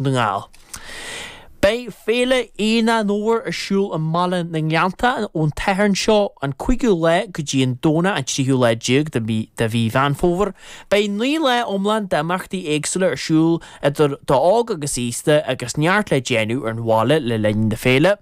na nGall. Beidh Féile Aonach an Fhómhair ar siúl i mbaile na nGleanntach ón tSatharn seo, an 5ú lá go dtí an Domhnach an 3ú lá déag de mhí Mheán Fómhair. Beidh naoi lá iomlán d'imeachtaí éagsúla ar siúl idir d'óg agus aosta agus neart le déanamh ar an bhaile le linn na féile.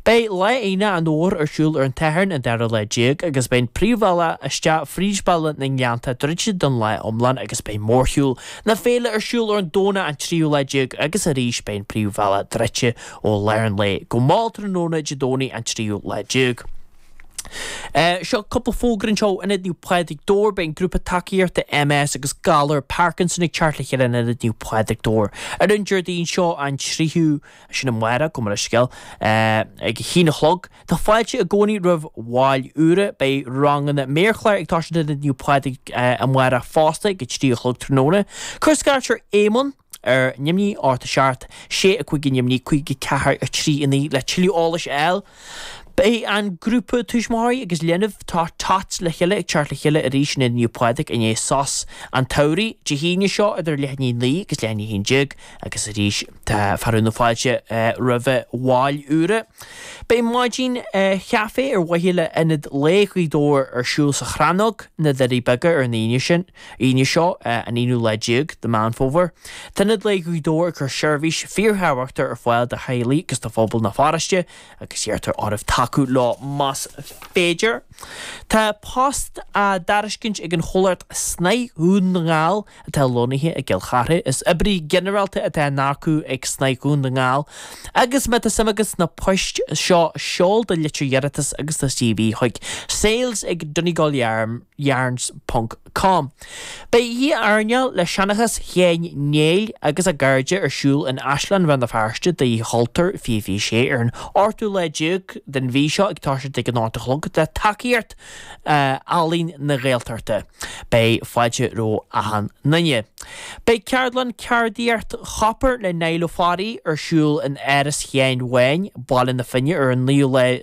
Beidh Lá Aonach an Fhómhair ar siúl ar an tSatharn an dara lá déag agus beidh an príomhbhealach isteach fríd bhaile na nGleanntach druidte don lá iomlán agus beidh mórshiúl na féile ar siúl ar an Domhnach an tríú lá déag agus arís beidh an príomhbhealach druidte ó lár an lae go mall tráthnóna Dé Domhnaigh an tríú lá déag. Seo cúpla fógra anseo ó Ionad Naomh Pádraig, Dobhar, Beidh an Grúpa Tacaíochta MS agus Galar Parkinson ag teacht le chéile in Ionad Naomh Pádraig, Dobhar, ar an Déardaoin seo an 3ú Sin amárach, gabh mo leithscéal. Ag a haon a chlog. Tá fáilte i gcónaí roimh bhaill úra. Beidh ranganna méarchláir ag toiseacht in Ionad Naomh Pádraig amárach fosta ag a trí a chlog tráthnóna. Cuir scairt ar Éamonn ar neamhní, ocht a seacht, 6 5 neamhní 5 4 3 9 le tuilleadh eolais a fháil. Beidh an grúpa tuismitheoirí agus leanbh Tá Tots le Chéile ag teacht le Chéile arís in Ionad Naomh Pádraig i ndiaidh sos an tsamhraidh Dé hAoine seo idir leath i ndiaidh 9 agus leath i ndiaidh 11 agus arís tá fearadh na fáilte roimh bhaill úra. Beidh maidin chaifé ar mhaithe le hIonad Lae Ghaoth Dobhair ar siúl sa Chrannóg, Na Doirí Beaga ar an Aoine sin. Aoine seo, an aonú lá déag de Mheán Fómhair, tá Ionad Lae Ghaoth Dobhair ag cur seirbhís fíorthábhachtach ar fáil do theaghlaigh agus do phobal na pharóiste agus iarrtar oraibh tacú leo más féidir. Tá post á dtairiscint ag an chomhlacht Snáith Dhún na nGall atá lonnaithe i gCill Charthaigh. Is oibrithe ginearálta atá á n-earcú ag Snáith Dhún na nGall agus má tá suim agat sna poist seo seol do litir iarratais agus do CV chuig, sales@donegalyarn. yarns ponc com Beidh oíche airneáil le seanchas Sheáin Néill agus a gcairde ar siúl in Áislann Rann na Feirste d'Oíche Chultúir fiche fiche sé ar an ochtú lá déag den mhí seo ag toiseacht ag an ocht a chlog le tacaíocht Ealaín na Gaeltachta. Beidh fáilte roimh achan nduine. Beidh ceardlann ceardaíocht chopair le Niall Ó Fearraigh ar siúl in Áras Sheáin Bháin, Baile na Finne ar an naoú lá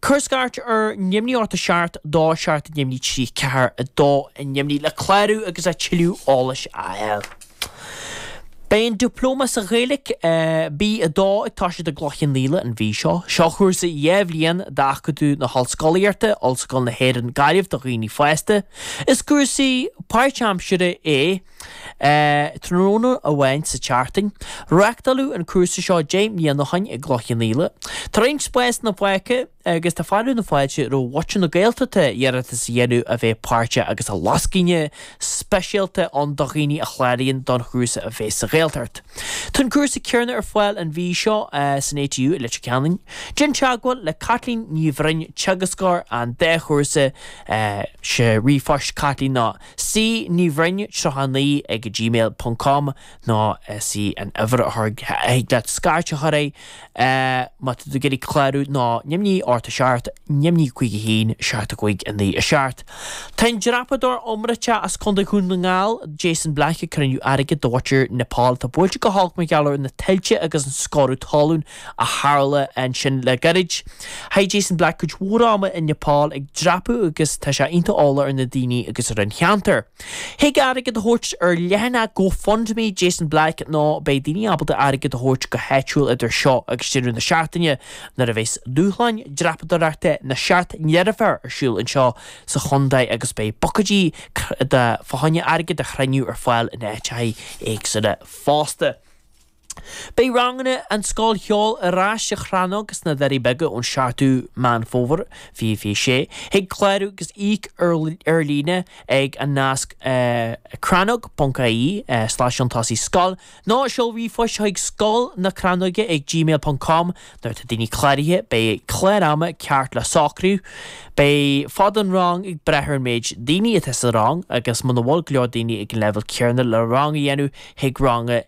Cuir scairt ar neamhní ocht 7, 2, 7, neamhní 3, 4, 2, neamhní le clárú agus a tuilleadh eolais a fháil. Beidh an Dioplóma sa Ghaeilge, B2, ag toiseacht i gCloich Cheann Fhaola an mhí seo. Seo cúrsa dhá bhliain d'Acadamh na hOllscolaíochta, Ollscoil na hÉireann, Gaillimh do dhaoine fásta. Is cúrsa páirtaimseartha é. tráthnóna amháin sa tseachtain. Reachtáladh an cúrsa seo deich mbliana ó shin i gCloich Cheann Fhaola. Tá roinnt spásanna fágtha agus tá fearadh na fáilte roimh mhuintir na Gaeltachta iarratas a dhéanamh a bheith páirteach agus lascaine speisialta ann do dhaoine a chláraíonn don chúrsa a bheas sa Ghaeltacht. Tá an cúrsa céarna ar fáil an mhí seo san ATU i Leitir Ceanainn. Déan teagmháil le Caitlín Ní Bhroin, Teagascóir an dá chúrsa, ríomhphost, Caitlín nó. C. Ní Bhroin 39 ag gmail ponc com nó is í an uimhir a thig leat scairt a chur air má tá tú ag iarraidh clárú ná neamhní, 8 7, neamhní 51 75 9 7. Tá an dreapadóir iomráiteach as Contae Dhún na nGall, Jason Black ag cruinniú airgid do mhuintir Nepal atá buailte go holc mar gheall ar na tuilte agus an sciorradh talún. a tharla ansin le gairid. Chaith Jason Black cuid mhór ama i Nepal ag dreapadh agus tá sé iontach eolach ar na daoine agus ar an cheantar. Thig airgead a thabhairt ar leathanach GoFundMe Jason Black nó beidh daoine ábalta airgead a thabhairt go háitiúil idir seo agus deireadh na seachtaine nuair a bheas Dúshláin Dreapadóireachta na Seacht nDeirféar ar siúl anseo sa chontae agus beidh bucaeidí fá choinne airgead a chruinniú ar fáil in áiteacha éagsúla fosta. Beidh ranganna an Scoil Cheoil ar ais sa Chrannóg sna Doirí Beaga ón 7ú Meán Fómhair 2026. Thig clárú agus íoc ar líne ag an nasc crannóg.ie slash an tosaigh scoil nó seol ríomhphost chuig scoil na crannóige ag gmail ponc com Nuair atá daoine cláraithe, beidh clár ama ceart le socrú. Beidh fad an rang ag brath ar an méid daoine atá sa rang agus muna bhfuil go leor daoine ag an leibhéal céarna le rang a dhéanamh, thig rang a.